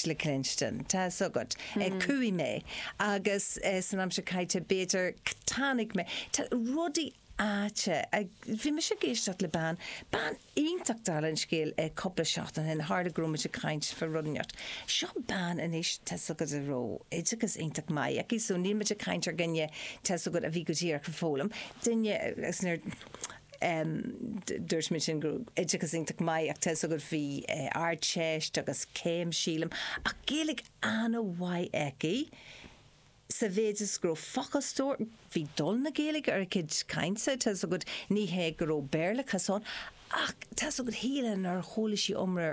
le cluinstin. Tá 'fhios agat, chuaigh mé agus san aimsir chaite b'fhéidir, chonaic mé rudaí aite. Bhí mise ag éisteacht le bean, bean iontach dála an scéil cúpla seachtain ó shin, tharla go raibh muid ag caint fá rud inteacht. Seo bean anois, tá 'fhios agat, a raibh oideachas iontach maith aici, so níl muid ag caint ar dhuine, tá 'fhios agat, a bhí go díreach ag foghlaim, duine, agus nuair, Dúirt mé sin go raibh oideachas iontach maith aici, tá 'fhios agat, bhí ardteist agus céim, sílim, ach Gaeilge an-mhaith aici sa mhéid is go raibh focal stór, bhí dul na Gaeilge ar a cuid cainte, tá 'fhios agat, ní hé go raibh Béarlachas ann ach tá 'fhios agat, shílfeá nár chuala sí iomrá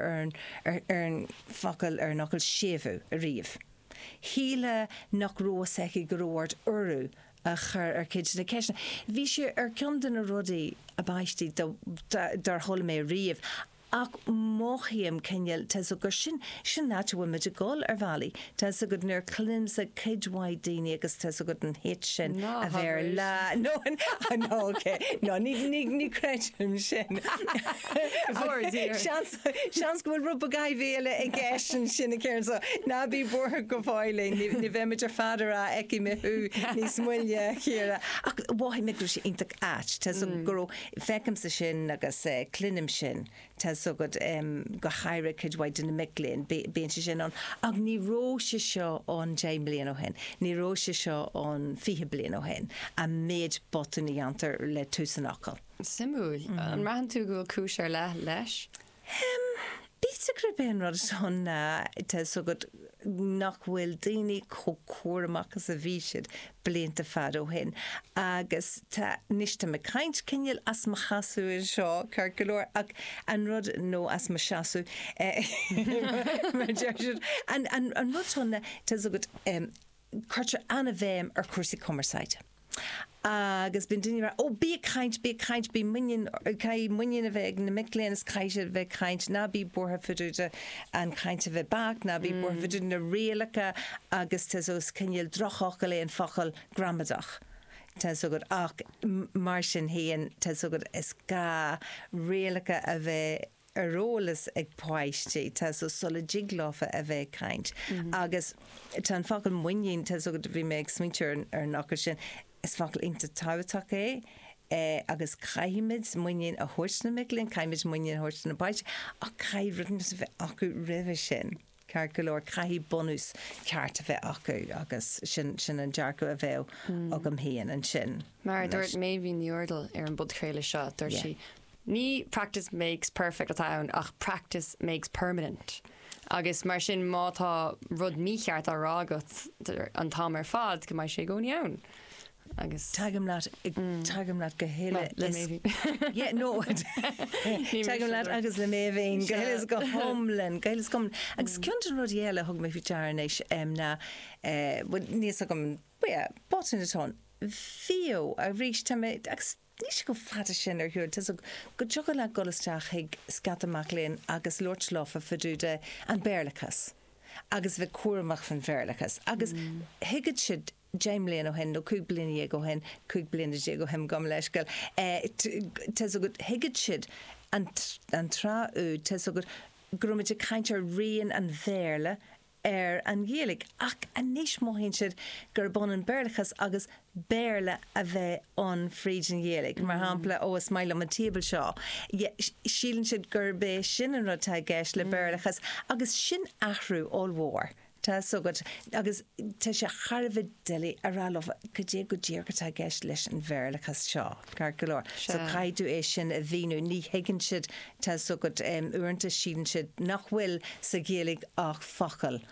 ar an focal, ar an fhocal séimhiú ariamh. Shílfeá nach raibh 'fhios aici go raibh ort urú a chur ar chuid de na ceisteanna. Bhí sé ar cheann de na rudaí ab aistí dár chuala mé riamh, ach mothaím cineál, tá 's agad, sin an áit a bhfuil muid ag dul, ar bhealaí, tá 's agad, nuair a chluinimse cuid mhaith daoiní agus tá 's agad an shit sin a bheith ar lá nóin, á, no, okay, no, ní, ní, ní chreidim sin, seans, Seans go bhfuil rud beag áibhéile i gceist ansin, a Karen, so ná bí buartha go fóillín, ní, ní bheimid ar fad ag rá fheicfidh mé thú níos moille, a chara. Ach mhothaigh mé go raibh sé iontach ait, tá 'fhios agat, go raibh, feicimse sin agus eh, cluinim sin, tá 'fhios agat, em, go háirithe cuid mhaith de na mic léinn, bí, bíonn sé sin ann, ach ní raibh sé seo ann deich mbliana ó shin, ní raibh sé seo ann fiche bliain ó shin, an méid botúin a dhéantar le tús an fhocail. Suimiúil. An mbraitheann tú go bhfuil cúis ar leith leis? B'fhéidir gurb é an rud atá ann, tá 'fhios agat, nach bhfuil daoine chomh cúramach is a bhí siad blianta fada ó shin agus tá, anois tá mé ag caint cineál as mo sheasamh anseo, ceart go leor, ach an rud, nó as mo sheasamh, mar a deir siad, an rud atá ann, tá 'fhios agat, cuirtear an-bhéim ar chúrsaí cumarsáide. Agus bíonn daoine ag rá, 'Ó, bí ag caint, bí ag caint, bí muinín, caithfidh muinín a bheith ag na mic léinn is caithfidh siad a bheith ag caint, ná bí buartha fá dtaobh de an chaint a bheith beacht, ná bí buartha fá dtaobh de na rialacha agus tá 'fhios agat is cineál drochfhocal é an focal gramadach, tá 'fhios agat, ach mar sin féin, tá 'fhios agat, is gá rialacha a bheith. ar eolas ag páistí, tá 'fhios agat, sula dtig leofa a bheith ag caint. Agus tá an focal muinín, tá 'fhios agat, bhí mé ag smaointiú ar an, ar an fhocal sin, is focal iontach tábhachtach é, eh agus caithfimid muinín a thabhairt do na mic léinn, caithfimid muinín a thabhairt do na páistí ach caithfidh cruinneas a bheith acu roimhe sin. Ceart go leor, caithfidh bunús ceart a bheith acu agus sin an dearcadh a bheadh agam féin ansin. Mar a dúirt Meidhbhín Ní Úrdail ar an bpodchraoladh seo, dúirt sí, ní practice makes perfect atá ann ach practice makes permanent agus mar sin má tá rud mícheart á rá agat an t-am ar fad go mbeidh sé i gcónaí ann. agus. Tagaim leat, tagaim leat go huile is. le mé féin. Yeah, no. Tagaim leat agus le mé féin go huile is go hiomlán, go huile is go hiomlán. Agus cionn de na rudaí eile a thug mé fá dear anois ná, bhuel, níl a fhios agam, but yeah, botún atá ann, bhíodh arís, tá mé, agus níl sé chomh fada sin ó shin, tá's agat, go dtiocfadh leat dul isteach chuig scata mac léinn agus labhairt leo fá dtaobh den Bhéarlachas agus a bheith cúramach fán Bhéarlachas agus thuigfead siad deich mbliana ó shin, nó cúig bliana dhéag ó shin, cúig bliana déag ó shin, gabh mo leithscéal, tá's agat, thuigeadh siad an tráth úd, tá's agat, go raibh muid ag caint ar rian an Bhéarla ar an Ghaeilge, ach anois mothaíonn siad gurb ionann Béarlachas agus Béarla a bheith ann fríd an Ghaeilge. Mar shampla, ó, is maith liom an table seo, síleann siad gurb é sin an rud atá i gceist le Béarlachas, agus sin athrú ollmhór. Tá a fhios agat, agus tá sé thar a bheith doiligh a rá leo cad é go díreach atá i gceist leis an Bhéarlachas seo, ceart go leor, so caithfidh tú é sin a mhíniú. Ní thuigeann siad, tá a fhios agat, uaireanta síleann siad nach bhfuil sa Ghaeilge ach focail.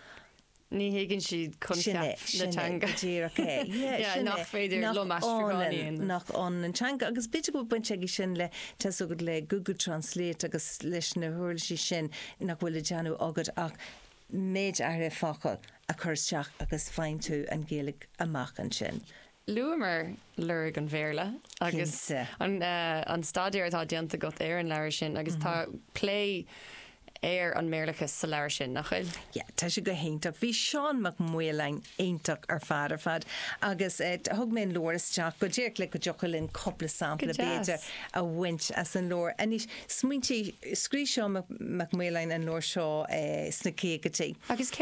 Ní thuigeann siad coincheap na teanga. Sin é, go díreach é. Yeah, nach féidir liom aistriúchán a dhéanamh. Nach ionann an teanga, agus b'fhéidir go bhfuil baint aige sin le, tá a fhios agat, le Google Translate agus leis na huirlisí sin nach bhfuil le déanamh agat ach, méid áirithe focal a chur isteach agus faigheann tú an Ghaeilge amach ansin. Luamar lorg an Bhéarla agus an staidéar atá déanta agat ar an leabhar sin agus tá plé ar an mBéarlachas sa leabhar sin, nach bhfuil? Yeah, tá sé go hiontach. Bhí Seán Mac Maoláin iontach ar fad ar fad agus thug mé an leabhar isteach go díreach le go dtiocfadh linn cúpla sampla, b'fhéidir, a bhaint as an leabhar. Anois, Smaointigh, scríobh Seán Mac Maoláin an leabhar seo sna caogaidí. Agus cérbh